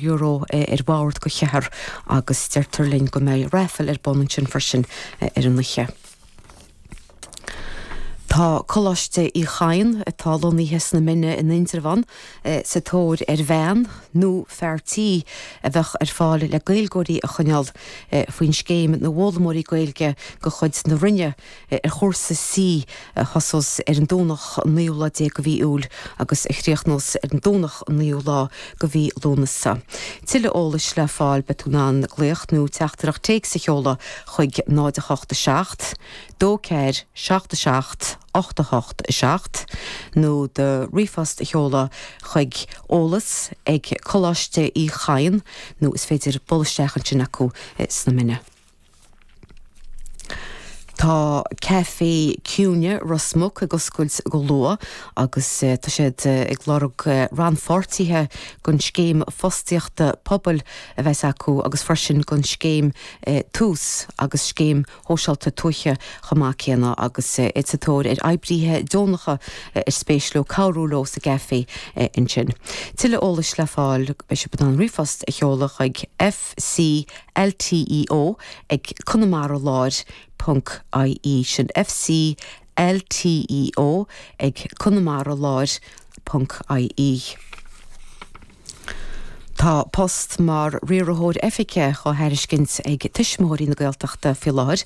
euro é ar bhord dho cheathrar agus deirtear linn go mbeidh raifil ar bun ansin freisin ar an oíche. Tá Coláiste Uí Chadhain, atá lonnaithe sna Mine in Indreabhán, sa tóir ar bhean nó fear tí a bheadh ar fáil le Gaeilgeoirí a choinneáil faoi scéim na bhfoghlaimeoirí Gaeilge de chuid na Roinne ar chúrsa C a thosós ar an Domhnach an naoú lá déag de mhí Iúil agus a chríochnós ar an Domhnach an naoú lá de mhí Lúnasa. Tuilleadh eolais le fáil beidh tú in ann glaoch nó teachtaireacht téics a sheoladh chuig 08 7 2 4 7 7 8 8 7 nó do ríomhphost a sheoladh chuig eolas ag Coláiste Uí Chadhain nó is féidir dul isteach ansin acu sna Mine. Tá Caifé Cuimhne Ros Muc ag oscailt go luath agus tá siad ag lorg rannpháirtithe don scéim fostaíochta pobail a bheas acu agus freisin don scéim Tús agus scéim shóisialta tuaithe chomh maith céanna. Agus iad sa tóir ar oibríthe deonacha ar spéis leo cabhrú leo sa gcaifé ansin. Tuilleadh eolais le fáil, beidh sibh in ann ríomhphost a sheoladh chuig, F. FCLTEO ag Conamara Láir ponc IE Sin FCLTEO ag Conamara Láir ponc IE Tá post mar Riarthóir Oifige á thairiscint ag Tuismitheoirí na Gaeltachta faoi láthair.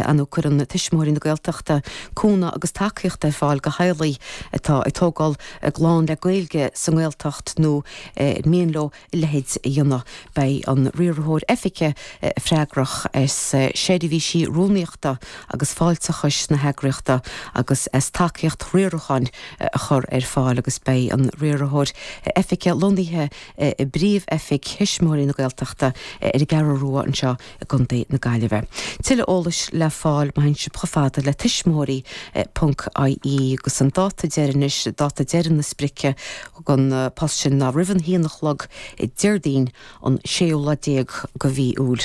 An cuireann Tuismitheoirí na Gaeltachta cúnamh agus tacaíocht ar fáil do theaghlaigh atá ag tógáil a gclann le Gaeilge sa nGaeltacht nó ar mian leo a leithéid a dhéanamh, beidh an Riarthóir Oifige freagrach as seirbhísí rúnaíochta agus fáilteachais na heagraíochta agus as tacaíocht riaracháin a chur ar fáil agus beidh an Riarthóir Oifige lonnaithe i bpríomh-oifig Thuismitheoirí na Gaeltachta ar an gCeathrú Rua anseo i gContae na Gaillimhe. Tuilleadh eolais le fáil, má théann sibh chomh fada le tuismitheoirí. ie agus an dáta deiridh anois, dáta deiridh na sprice don phost sin ná roimh an haon a chlog Déardaoin an séú lá déag de mhí Iúil.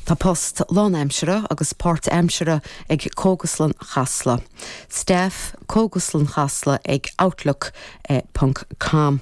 Tá poist lánaimseartha agus páirtaimseartha ag Cógaslann Chasla. Staff, Cógaslann Chasla ag outlook. com.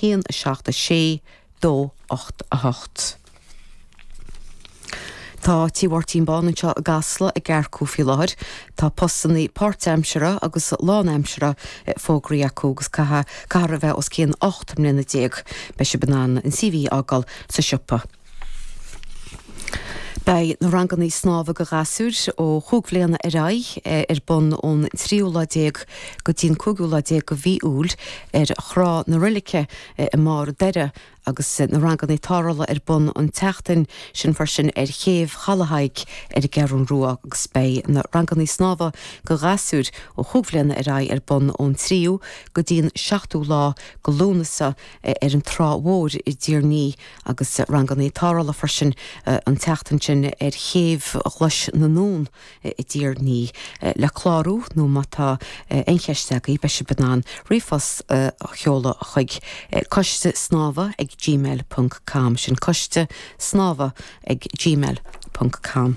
haon, a seacht, a sé, dó, ocht, a hocht. Tá Tigh Mháirtín Bán anseo i gCasla ag earcú faoi láthair. Tá postannaí páirtaimseartha agus lánaimseartha fógraithe acu agus caithfear a bheith os cionn ocht mbliana déag. Beidh sibh in ann an CV fhágáil sa siopa. Beidh na ranganna snámha do ghasúir ó chúig bhliana ar aghaidh ar bun ón tríú lá déag go dtí'n cúigiú lá déag de mhí Iúil ar Thrá na Reilige i mBarr an Doire agus na ranganna tarrthála ar bun an tseachtain sin freisin ar Chéibh Chaladh Thaidhg ar an gCeathrú Rua agus beidh na ranganna snámha do ghasúir ó chúig bhliana ar aghaidh ar bun ón tríú go dtí'n seachtú lá de Lúnasa ar an Trá Mhóir i dTír an Fhia agus ranganna tarrthála freisin an tseachtain sin ar Chéibh Ghlais na nUan i dTír an Fhia le clárú nó má tá aon cheist agaibh beidh sibh in ann ríomhphost a sheoladh chuig coiste snámha ag gmail ponc com sin coiste snámha ag gmail ponc com.